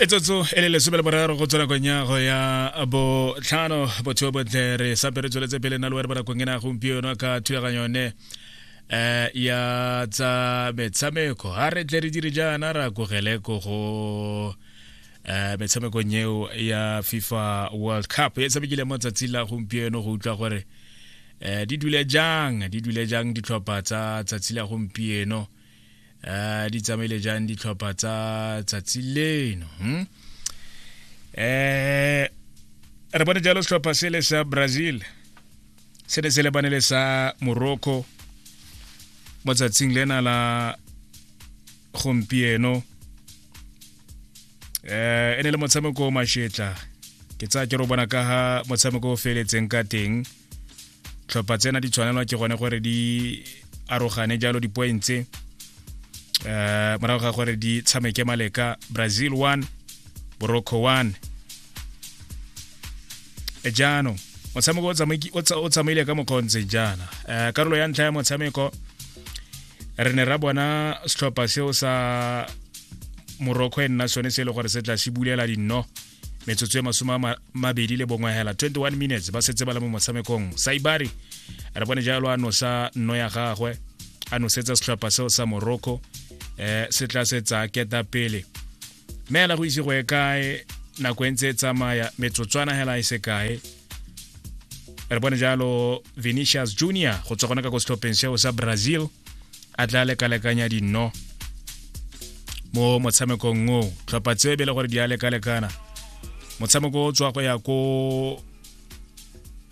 e tsotso e le lesome le boraro go tswa nakong ya go ya botlhano botsheo botle re sape re tsweletse pele na le were bonakong e na gompieno ka thulaganyo yone um ya tsa metshameko ga re tle re dire jaana ra kogele ko go um metshamekong eo ya fifa world cup e tshamekile mo tsatsi la gompieno go utlwa gore um di dule jang di dule jang ditlhopha tsa tsatsi la gompieno uh, di tsamaile jang ditlhopha tsa tsatsi leno hmm? eh re bone jalo setlhopha se le sa brazil se ne se lebane le sa morocco mo tsatsing lena la gompieno eh e ne le motshameko o mashetla ke tsaya ke ro bona ka ha motshameko o feletseng ka teng tlhopha tsena di tshwanelwa ke gone gore di arogane jalo di-pointse um eh, morago ga gore di tshameke maleka brazil 1 borocco 1 e jaanong motshameko o tsamaile ka mokgwa o ntseng jaana um karolo ya ntlha ya motshameko re ne ra bona setlhopha seo sa morocco e nna sone se e le gore se tla se bulela dinno metsotso e masome a mabedi le bongwe hela 21 minutes ba setse ba le mo motshamekong saibari re bone jalo a nosa nno ya gagwe a nosetsa setlhopha seo sa morocco um eh, se tla se tsa keta pele mme ela go ise go e kae nako e ntse e tsamaya metsotswana hela e se kae re bone jalo venetius junior go tswa gone ka ko setlhopheng seo sa brazil a tla lekalekanya dinno mo motshamekong o tlhopha tse be le gore di a lekalekana motshameko o tswa go ya ko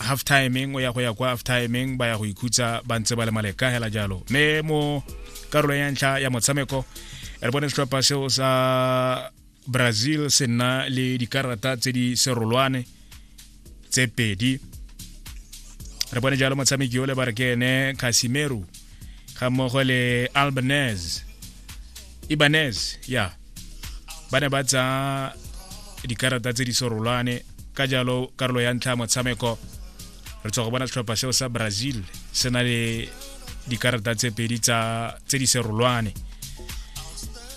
half timing o ya go ya kwa half timing ba ya go ikhutsa ba ntse ba le maleka hela jalo mme mo karolong ya ntlha ya motshameko re bone setlhopha seo sa brazil se nna le dikarata tse di serolwane tse pedi re bone jalo motshameki ole ba re ke ene casimero ga mmogo le albanese ibanese ya yeah. ba ne ba tsa dikarata tse di serolwane ka jalo karolo ya ntlha ya motshameko re tswa go bona setlhopha seo sa brazil se na le dikarata tse pedi tse di serolwane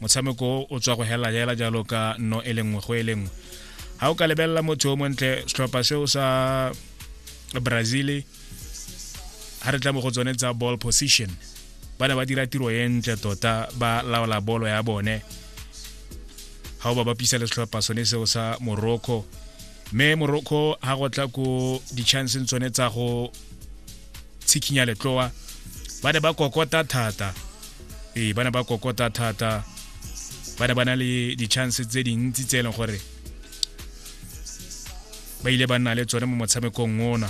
motshameko o tswa go hela jela jalo ka no e lengwe go e lengwe ga o ka lebelela motho o montle setlhopha seo sa brazil ga re tla mo go tsone tsa ball position ba ne ba dira tiro e ntle tota ba laola bolo ya bone ga o ba bapisa le setlhopha sone seo sa morocco mme morocco ga go tla ko di-chanceng tsone tsa go tshikinya letloa ba ne ba kokota thata ee ba ne ba kokota thata ba ne ba na le di-chance tse dintsi tse e leng gore ba ile ba nna le tsone mo motshamekong ona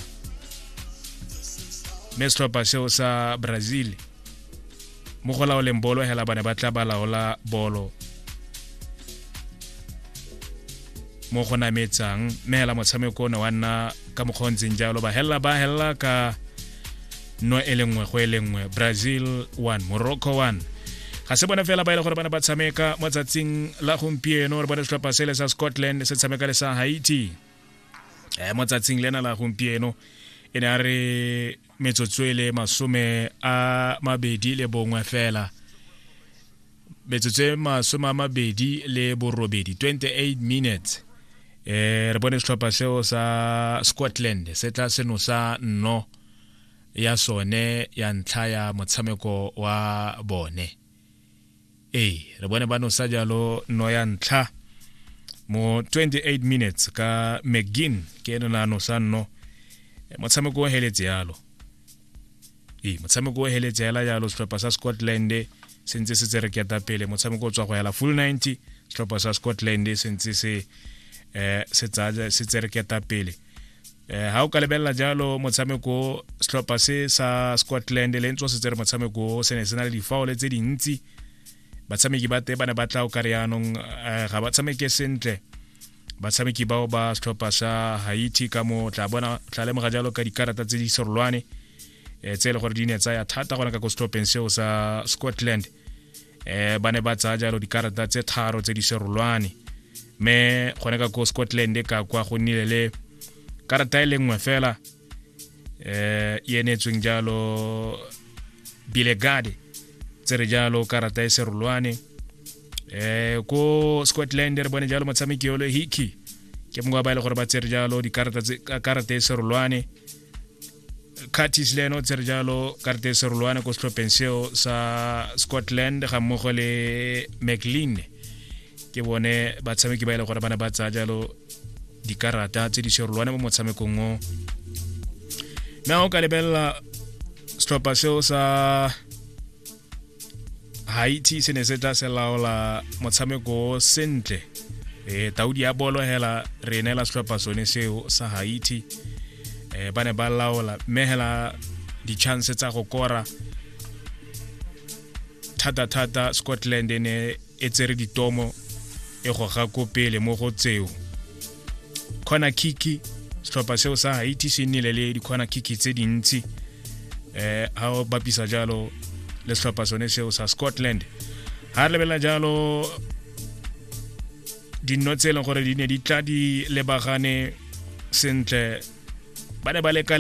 mme setlhopha seo sa brazil mo go laoleng bolo hela ba ne ba tla ba laola bolo mo go nametsang mme hela motshameko o ne wa nna ka mokgwa o ntseng jalo ba helela ba helela ka no e le nngwe go e le nngwe brazil 1 morocco 1 ga se bone fela ba ile e gore ba ne ba tshameka mo tsatsing la gompieno re bone setlhopha sele sa scotland se tshameka le sa haiti um mo tsatsing lena la gompieno e ne a re metsotso e le masome a mabedi le bongwe fela metsotso e masome a mabedi le borobedi 28 minutes eh re bone setlhopha seo sa scotland se tla seno sa nno ya sone ya ntlha ya motshameko wa bone ee re bone ba nosa jalo no ya ntlha mo 28 minutes ka mcgin ke ene na nosa nno eh, motshameko o heletse yalo ee motshameko o heletse yala jalo setlhopha sa scotland se ntse se tsere keta pele motshameko o tswa go yala full 90 setlhopha sa scotland se ntse se um se tsere keta pele eh ha o ka lebelela jalo motshameko setlhopha se sa Scotland le ntse se tsere motshameko se ne se na le difaole tse dintsi batshameki ba te ba ne ba tla o ka re yaanong eh, ga ba tshameke sentle batshameki bao ba setlhopha sa haiti ka mo tla bona tla lemoga jalo ka dikarata tse di serolwane eh, tse e le gore di ne tsaya thata gona ka ko setlhopheng seo sa scotland eh ba ne ba tsaya jalo dikarata tse tharo tse di serolwane mme gone ka ko scotland e ka kwa go nnile le karata e le nngwe fela eh e enetsweng jalo bilegade tse re jalo karata e serolwane eh ko scotland re bone jalo motshameki yolo hiki ke mongwe ba e le gore ba tsere jalo dikarata e serolwane curtis le ene o tsere jalo karte serolwane ko setlhopheng seo sa scotland ga mmogo le mclean ke bone batshameki ba e le gore ba ne ba tsaya jalo dikarata tse di serolwane mo motshamekong o na o ka lebelela setlhopha seo sa haiti se ne se tla se laola motshameko sentle e taudi ya bolo hela re neela setlhopha sone seo sa haiti e ba ne ba laola mme hela di-chance tsa go kora thata-thata scotland e ne e tsere ditomo e goga ko pele mo go tseo corner kick setlhopha seo sa haiti se nnile le di-corner kick tse dintsi eh ha o bapisa jalo le setlhopha sone seo sa scotland ha re lebelela jalo dinno tse e leng gore di ne di tla di lebagane sentle ba ne ba leka